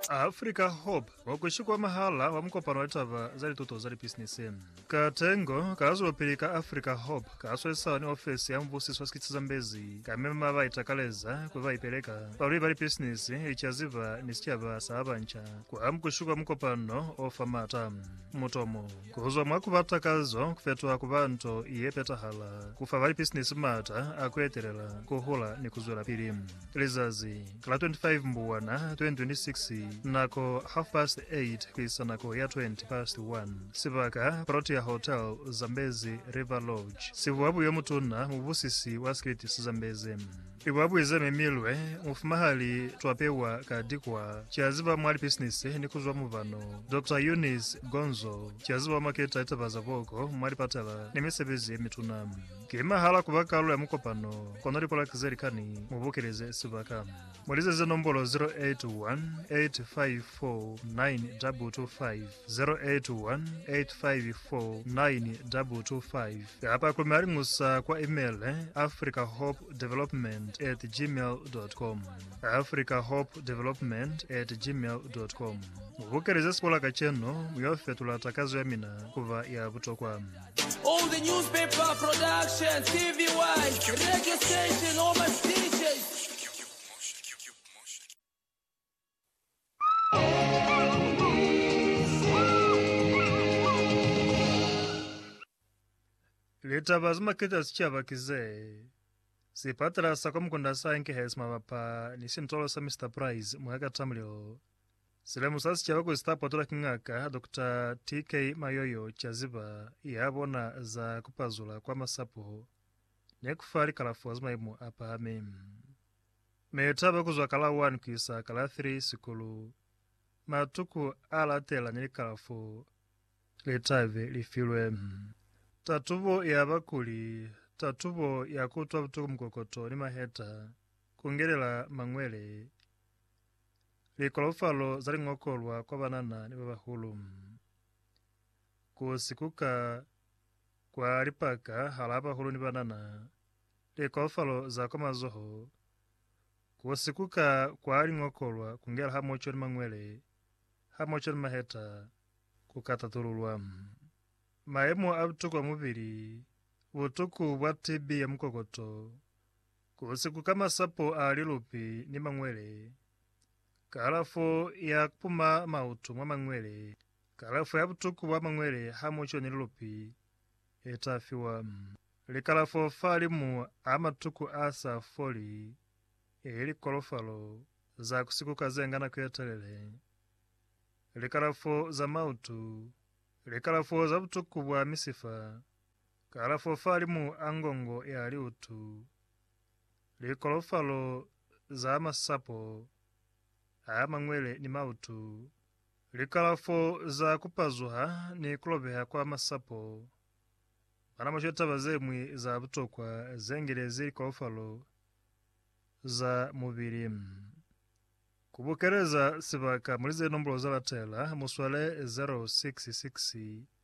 Africa Hope wa ku shikwa mahala wa mukopano wa litaba za lituto za lipisinisi. Ka tengo, ka zwelopili ka Africa Hope ka swesa ni ofesi ya mubusiso wa sikitsi Zambezi ka mema ba itakaleza ku ba ipeleka, balwi ba lipisinisi, licaziba ni sicaba sa ba banca kwa mukushikwa mukopano o fa maata. Mutomo, ku zwa mwa ku ba takazo ku fetoha ku ba nto ye petahala, ku fa ba lipisinisi maata a ku etelela, ku hula ni ku zwelapili. Lizazi la 25 Mbuwana 2026 nako half past 8 kuisa nako ya 20 past 1 Sibaka, Protea Hotel, Zambezi River Lodge Sibuabui yomutuna mubusisi wa Street sa Zambezi Libuabui ze memilwe mufumahali twa pewa ka dikwa Ki aziba mwa lipisinisi ni kuzwa mubano Doctor Eunice Gonzo Ki aziba wa maketa litaba za boko mwa lipatala ni misebezi yemituna. Ki mahala kuba kalulo ya mukopano kono likolaki ze likani mu bukeleze sibaka. Mu lizeze nombolo 0818549225, 0818549225, kapa ku maliñusa kwa imele, africahopedevelopment at gmail dot com, africahopedevelopment at gmail dot com. Mu bukeleze sikolaka cenu, mu yo fetula takazo ya mina kuba ya butokwa. All the newspaper production, TV wise, radio station, all my DJs. Litaba ze maketa sicaba ki ze. Sipatala sa kwa Mukunda sa enkehe simabapa ni sintolo sa Mr Price mwa Katamulilo. Silemu sa sicaba kuli sita patola ki Ngaka Doctor TK Mayoyo caziba ya bona za kupazula kwa masapo ne kufa likalafo za maimo a pahami. Meyo taba kuzwa ka la 1 kuisa ka la 3 sikulu, matuku a latela ni likalafo letabe lifilwe. Tatubo ya bakuli, tatubo ya kuutwa butuku mukokoto ni maheta, kungelela mangwele, Likolofalo za liñokolwa kwa banana ni babahulu. Ku sikuka kwa lipaka halaa bahulu ni banana. Likolofalo za kwa mazoho. Ku sikuka kwa liñokolwa ku ngela hamoco ni mañwele, hamoco ni maheta, ku ka tatululwa. Mayemo a butuku a mubili, butuku bwa TB ya mukokoto. Ku si ku ka masapo a lilupi ni mangwele. Kalafo ya kupuma mautu mwa mangwele. Kalafo ya butuku bwa mangwele hamoco ni lilupi le ta fiwa. Likalafo fa limu a matuku a sa foli, eli likolofalo za ku si ku ka ze nga nako ye telele. Likalafo za mautu. Likalafo za butuku bwa misifa. Kalafo fa limu a ngongo ya liutu, likolofalo za masapo a mangwele ni mautu, likalafo za kupazuha ni kulobeha kwa masapo, mwana mushe taba zeñwi za butokwa zengelezi likolofalo za mubili. Ku bukeleza sibaka muli ze nombulo za latela, muswale 066.